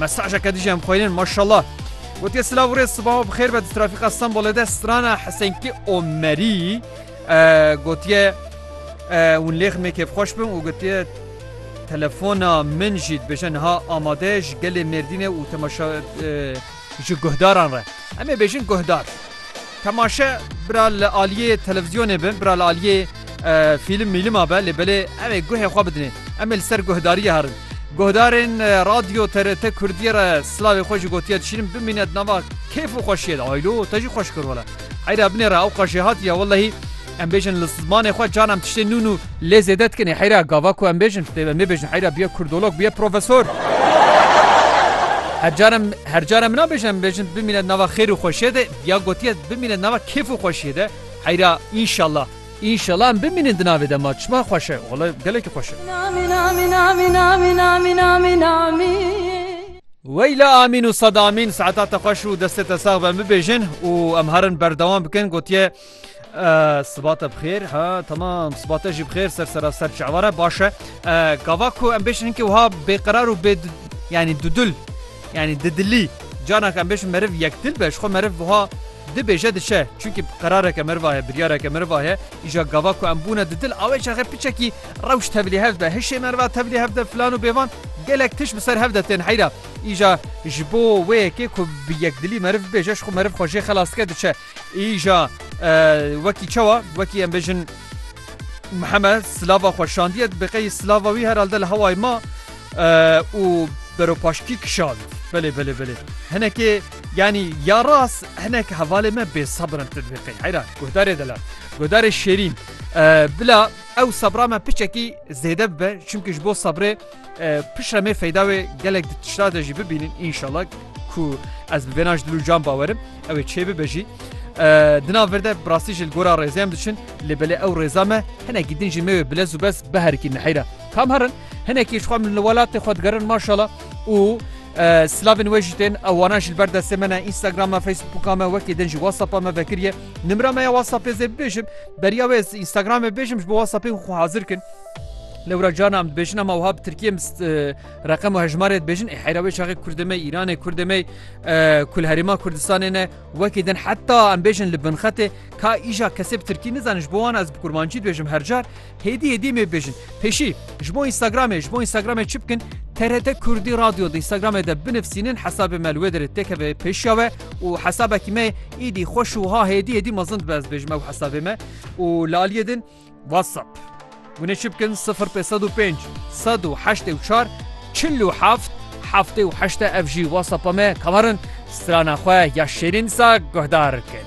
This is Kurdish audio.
mesajeke dijî em xweynin maşallah. Gotiye silav rê sibaho bi xêr be di trafîqa Stenbolê de strana Hesenkî Omerî gotiye hûn lêx mê kêfxweş bin û gotiye telefona min jî dibêje niha amade ji gelê Mêrdînê û temaşa Ji guhdaran re. Em ê bêjin guhdar. Temaşe bira li aliyê televîzyonê be, bira li aliyê fîlim mîlima be lê belê ew ê guhê xwe bidinê. Em ê li ser guhdariyê herin. Guhdarên Radyo TRT Kurdiyê re silavê xwe jî gotiye dişînin bimîne di nava kêf û xweşiyê de. Aylo te jî xweş kir wele. Heyra binêre ewqas jê hatiye wellehî. Em bêjin li zmanê xwe canan tiştê nû nû lê zêde dikin. Heyra gava ku em bêjin dê em nêbêjin heyra biye kurdolog biye profesor. Hercaran hercaran min nabêjin em bêjin bimîne nava xêr û xweşiyê de ya gotiye bimîne nava kêf û xweşiyê de heyra înşallah. İnşallah em bimînin di navê de ma çima xweş e wala gelekî xweş e. Weyla amîn û sad amîn saeta te xweş û destê te sax be em bibêjin û em herin berdewam bikin gotiye Siba te bixêr ha tamam siba te jî bixêr ser sera ser çavare baş e gava ku em bêşin hinkê wiha bêqerar û bê yanî dudul yanî didilî canak em bêşin meriv yekdil be ji xwe meriv wiha dibêje dişe çunki qerareke meriva heye biryareke meriva heye îja gava ku em bûne didil awê çaxe piçekî rewş tevlî hev be hişê meriva tevlî hev de filan û bêvan gelek tiş bi ser hev de tên heyra îja ji bo wê yekê ku bi yekdilî meriv bêje ji xwe meriv xwe jê xelas dike diçe Îja wekî çawa wekî em bêjin Mihemed silava xwe şandiye bi qeyî silava wî herhalde li hewayê ma û beropaşkî kişand. Belê belê belê hinekê yanî ya ras hinek hevalê me bêsabir in tu dibê qey heyra guhdarê de la guhdarê şêrîn bila ew sebra me piçekî zêde bibe çimkî ji bo sebrê Piştre mê feyda wê gelek di tişta de jî bibînin înşala ku ez bi vêna ji dil û can bawerim ew ê çê bibe jî. Dina vir de birastî ji gora rêzê em diçin lê belê ew rêza me hinekî din jî me wê bilez û bez biherikî neheyra. Kam herin hinekî ji xwe min li welatê xwe digerin maşala û Slavên wê jî tên ewana ji ber destê me ne Instagrama Facebooka me wekê din jî WhatsAppa me vekiriye. Nimra me ya WhatsAppê zê bibêjim beriya wê Instagramê bêjim ji bo WhatsAppê xwe hazir kin. Lewra carna em dibêjin em wiha bi Tirkiyê reqem û hejmarê dibêjin ê heyra wê çaxê Kurdê me Îranê Kurdê me ku li herêma Kurdistanê ne wekî din heta em bêjin li binxetê ka îja kesê bi Tirkî nizane ji bo wan ez bi kurmancî dibêjim hercar hêdî hêdî mê bêjin pêşî ji bo Instagramê ji bo Instagramê çi bikin TRT Kurdî radyo di Instagramê de binivsînin hesabê me li wê derê têkeve pêşiya we û hesabekî me îdî xweş û ha hêdî hêdî mezin dibe ez dibêjim ew hesabê me û li aliyê din WhatsApp Guneşi bikin sifir pê sed û pênc sed û heştê û çar çil û heft heftê û heşt e ev jî WhatsAppa me kamarin strana xwe ya şêrîn disa guhdar kir.